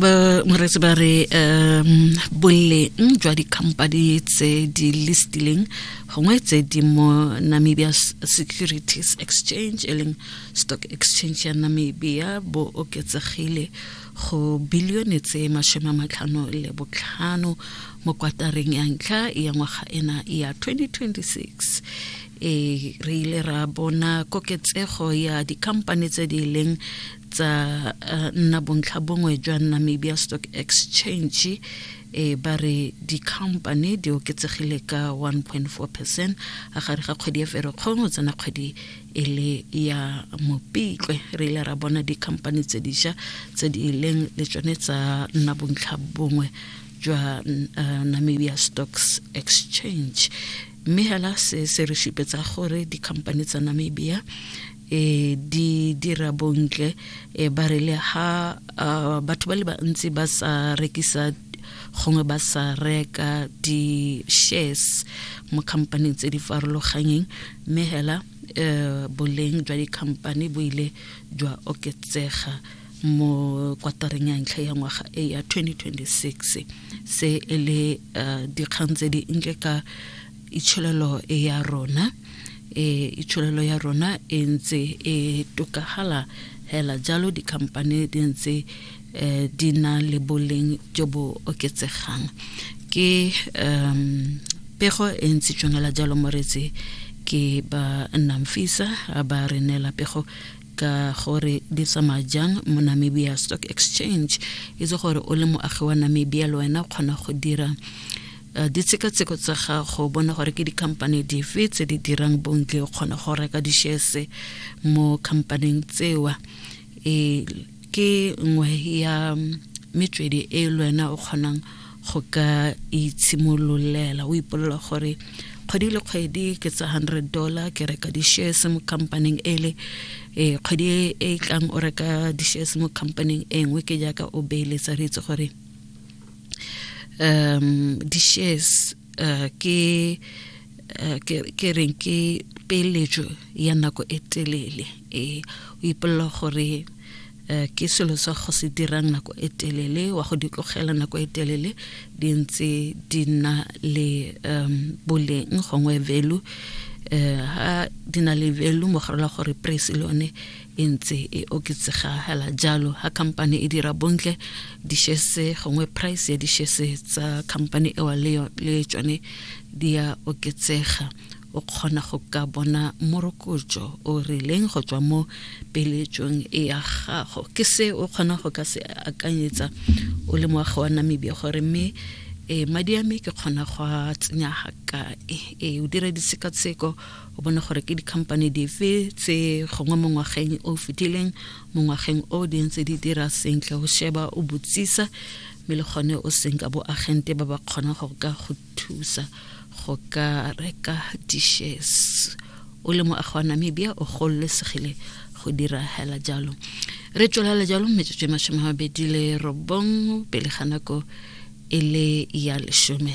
ba moretsi ba re um boleng jwa di-company tse di listileng gongwe tse di mo namibia securities exchange e leng stock exchange ya namibia bo oketsegile go bilione tse masome a matlhano le botlhano mo kwatareng ya ntlha ya ngwaga ena ya 2026 e re ile ra bona koketsego ya dikhamphane tse di leng tsa eh, nna bontlha bongwe jwa namibia stock exchange e ba re dikhamphane di oketsegile ka 1.4 percent a gare ga kgwedi ya ferekgong o tsena kgwedi e le ya mopitlwe re ile ra bona dikhamphane tse diša tse di leng le tsone tsa nna bontlha bongwe jwa uh, namibia stocks exchange mme hela se se re supetsa gore dikhamphane tsa namibia e di dira bontle e ba re le ha batho ba le bantsi ba sa rekisa gongwe ba sa reka di-shares mo khampaneng tse di farologanyeng mme hela um boleng jwa dikhamphane bo ile jwa oketsega mo kwatareng ya ntlha ya ngwaga e ya 2026 se e le uh, dikgang tse di nke ka itsholelo ya rona e itsholelo ya rona e ntse e tokagala hela jalo dikhamphane di ntse um di na le boleng jo bo oketsegang ke um pego e ntse tšongela jalo moretsi ke ba nnang fisa ba re neela pego ka gore di tsamaya jang mo namibia stock exchange itse gore o le moagi wa namibia le wena o kgona go dira Eh, ditshekatsheko tsa gago bona gore ke dikhamphane dife tse di dirang bontle o kgona go reka dishese mo khamphaneng tsewa e ke nngwe ya metswedi e le wena o kgonang go ka itshimololela o ipolela gore kgwedi le kgwedi ke tsa hundred dollar ke reka di-shares mo companyng ele um kgwedi e e tlang o reka di-shares mo companyng e nngwe ke jaaka o beeletsa re itse gore um di-shares uh, ke uh, ke reng ke peeletso ya nako e telele e o ipolela gore Eh, ke selo sa go se dirang nako e telele wa go di tlogela nako e telele di ntse di nna le um boleng gongwe velu um eh, ha di na le velu mogarela gore price le yone e ntse e oketsega hela jalo ha company e dira bontle dishese gongwe price ya dishese tsa company ewa le tsone di ya oketsega o kgona go ka bona morokotso o rileng go tswa mo peletsong e ya gago ke se o kgona go ka se akanyetsa o le moagi wa namibia gore mme e madi a me ke kgona go a tsenya ga kae e o dira ditshekatsheko o bone gore ke di-company dife tse gongwe mo ngwageng o fetileng mo ngwageng o di ntse di dira sentle go sheba o botsisa mme le gone o seng ka bo agente ba ba kgonang go ka go thusa go ka reka dishes o le moagi wa namibia o gololesegile go dira hela jalo re tswelela jalo metsotso e masome a mabedi le robong pele ga nako e le ya lesome